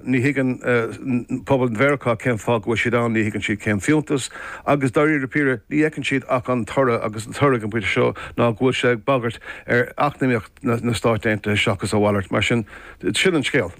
Ní thuigeann pobal Mheiriceá cén fáth go bhfuil siad ann, ní thuigeann siad cén fiúntas, agus dáiríre píre, ní fheiceann siad ach an toradh, agus an toradh ag an bpointe seo ná go bhfuil sé ag bagairt ar eacnamaíocht na Stáit Aontaithe seachas a mhalairt. Mar sin, sin an scéal.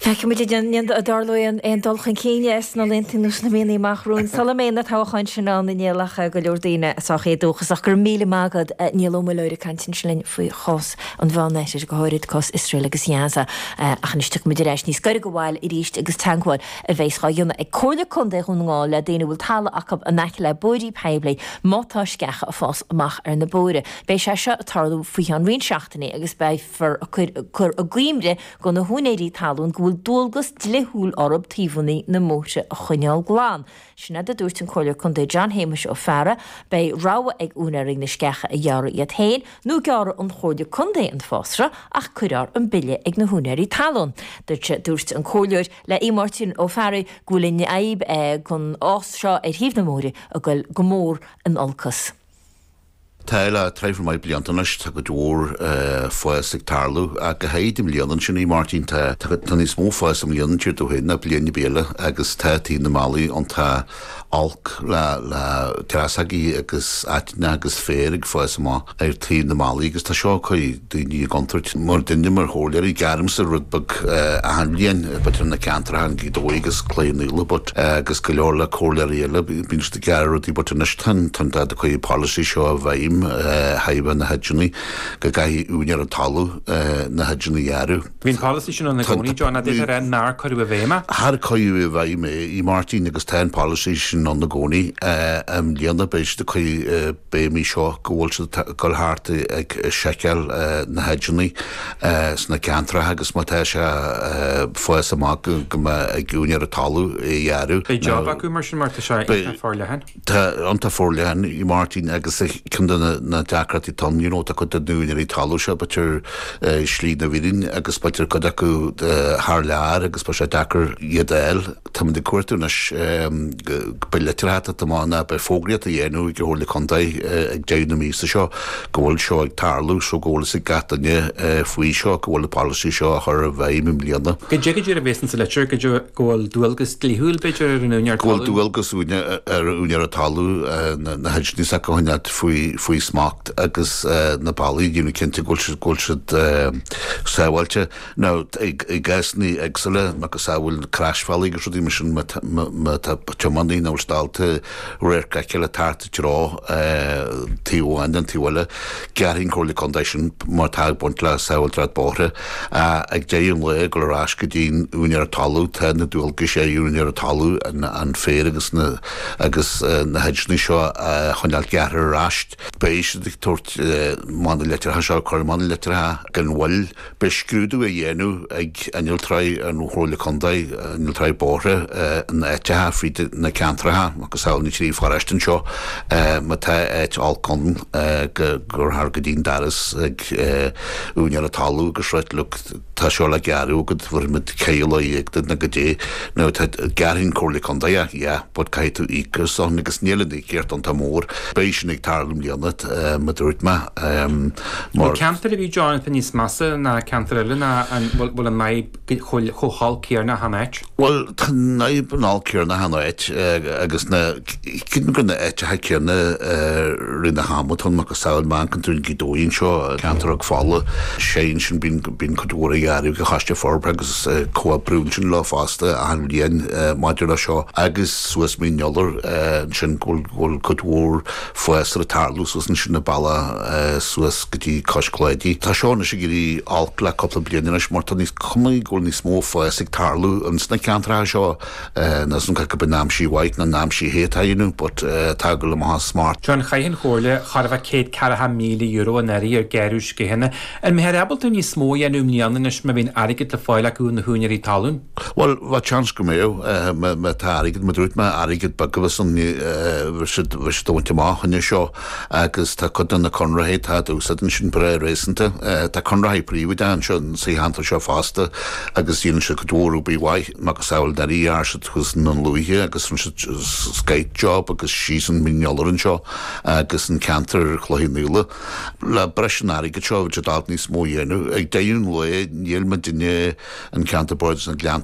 Feicfimid an dtarlóidh aon dul chun cinn sna laethanta nó sna míonna amach romhainn sula mbeidh na toghcháin sin ann i ndiaidh a go leor daoine sách éadóchasach. Go raibh míle maith agat, Niall Ó Muilleoir, ag caint ansin linn faoi chás. an Mheánoirthir, go háirid cás Iosrael agus Ghaza. Ach anois tiocfaimid ar ais níos gaire do bhaile arís agus teagmháil a bheas á dhéanamh ag Comhairle Contae Dhún na nGall le daoine a bhfuil talamh acu in aice le bóithrí poiblí má tá sceacha ag fás amach ar na bóithre. Beidh sé seo ag tarlú faoi cheann roinnt seachtainí agus beifear ag cur i gcuimhne do na húinéirí talún go bhfuil dualgas dlithiúil orthu taobhannaí na mbóithre a choinneáil glan. Sin a dúirt an Comhairleoir Contae John Shéamuis Ó Fearraigh. Beidh rogha ag úinéirí na sceacha a ghearradh iad féin nó gearrfaidh an Chomhairle Contae an fásra ach cuirfear an bille ag na húinéirí talún. Dúirt sé Dúirt an Comhairleoir le Aodh Máirtín Ó Fearraigh go bhfuil an fhadhb den fhás seo ar thaobh na mbóithrí ag goil go mór in olcas. Tá le tréimhse maith blianta anois, tá cuid mhór fás ag tarlú ach go háirid i mbliana. Ansin, Aodh Máirtín, tá níos mó fáis i mbliana, a deir tú féin, ná bliain ar bith eile agus tá taobh na mbealaí iontach olc le dreasógaí agus aiteannach agus féar ag fás amach ar taobh na mbealaí agus tá seo ag cur daoine i gcontúirt. Muidinne, mar chomhairleoirí, gearraimse rud beag achan bhliain, but ar na ceantracha i nGaoth Dobhair agus Cloich Cheann Fhaola but agus go leor le comhairleoirí eile, bíonn siad ag gearradh rudaí but anois tá siad ag cur an policy seo i bhfeidhm le haghaidh na hedgeannaí go gcaithfidh úinéir an talamh na hedgeannaí a ghearradh. Bhí an policy sin ann i gcónaí, John, ach b'fhéidir nár cuireadh i bhfeidhm é? Char cuireadh i bhfeidhm é, Máirtín, agus tá an policy sin ann i gcónaí. I mbliana beidh siad ag cur. Beidh an mhí seo go bhfuil siad ag dul thart ag seiceáil na hedgeannaí sna ceantracha agus má tá sé ag fás amach go mbeidh ag úinéir an talaimh a ghearradh. Beidh jab acu mar sin mar tá sé iontach forleathan. Tá iontach forleathan Aodh Máirtín agus ceann de na deacrachtaí atá ann you know tá cuid de na úinéirí talaimh seo b'fhéidir ar shlí na bhfíréan agus b'fhéidir cuid acu thar lear agus beidh sé deacair iad a fháil. Táimid ag cuartú anois go mbeidh litir ag teacht amach nó go mbeidh fógraíocht á dhéanamh ag an Chomhairle Contae ag deireadh na míosa seo go bhfuil seo ag tarlú so go bhfuil fhios ag gach duine faoi seo go bhfuil an polasaí seo á chur i bhfeidhm i mbliana. Caidé go díreach a bhéas insa litir caidé go bhfuil dualgas dlíthiúil b'fhéidir ar an úinéir talún. Go bhfuil dualgas ar an úinéir an talaimh na hedgeannaí s'acu a choinneáil faoi smacht agus na bealaí a dhéanamh cinnte go bhfuil siad sábháilte. Now, i gcásanna éagsúla, macasamhail crosbhealaí agus rudaí mar sin, má tá, má tá tiománaí nach bhfuil ábalta radharc a fheiceáil thart i dtreo taobh amháin nó an taobh eile, gearrfaidh an Comhairle Contae sin mar atá ag baint le sábháilteacht bóithre. Ach ag deireadh an lae, ag dul ar ais go dtí an úinéara talamh, tá na dualgais ar an úinéara talamh an féar agus na, agus na hedgeannaí seo a choinneáil gearrtha ar ais. Beidh siad ag tabhairt amach na litreacha seo, cur amach na litreacha gan mhoill. Beidh scrúdú á dhéanamh ag innealtóirí an Chomhairle Contae, Innealtóirí Bóithre, in áiteacha fríd na ceantracha macasamhail na trí pharóiste anseo. Má tá áit olc ann gabhfar go dtí an doras ag úinéir an talún agus a ráit leo tá seo le gearradh agat bhéarfaimid ceithre lá dhéag duit nó go dtí nó gearrfaidh an Chomhairle Contae é yeah but caithfidh tú íoc as san agus níl an íocaíocht iontach mór. Beidh sin ag tarlú i mbliana mar a dúirt mé. Nó ceantar ar bith dar leat atá níos measa ná ceantar eile nó an bhfuil an fhadhb chomh holc céarna achan áit? Bhuel, tá an fhadhb an olc céarna achan áit agus na, creidim gur na áiteacha céarna i rith an ama atá ann macasamhail ceantar Ghaoth Dobhair anseo, ceantar Chnoc Fola, sea ansin bíonn cuid mhór á ghearradh ag an Choiste Forbartha agus comhoibríonn sinn leo fosta achan bhliain maidir leis seo agus suas Mín an Iolair ansin go bhfuil cuid mhór Fás ag tarlú suas ansin an bealach suas go dtí Cois Cláidí. Tá seo anois ag éirí olc le cúpla bliain anois mar tá níl a fhios agam tuige go bhfuil níos mó fás ag tarlú ins na ceantracha seo. Níl a fhios agam cé acu an é an aimsir mhaith nó an aimsir the atá á dhéanamh but tá go le mo sháith smart. John Chaith an Chomhairle chóir a bheith €140,000 anuraidh ar gearradh sceachanna An mbeifear ábalta níos mó a dhéanamh i mbliana anois má bhíonn airgead le fáil acu ó na húinéirí talún? Bhuel, bheadh seans go mbeadh. Má tá airgead, mar a dúirt mé airgead beag, atá siad a bhaint amach fá choinne seo agus tá cuid de na conraitheoirí atá ag úsáid ansin breá réasúnta. Tá conraitheoirí príobháideacha anseo sa cheantar seo fosta agus déanann siad cuid mhór obair mhaith macasamhail anuraidh ghearr siad thuas i nDún Lúiche agus rinne siad scoth job agus síos an Mín an Iolair anseo agus an ceantar Chloich Cheann Fhaola. Le breis an airgid seo bheadh siad ábalta níos mó a dhéanamh. Ag deireadh an lae níl muidinne i gceantar bardais na nGleanntaí.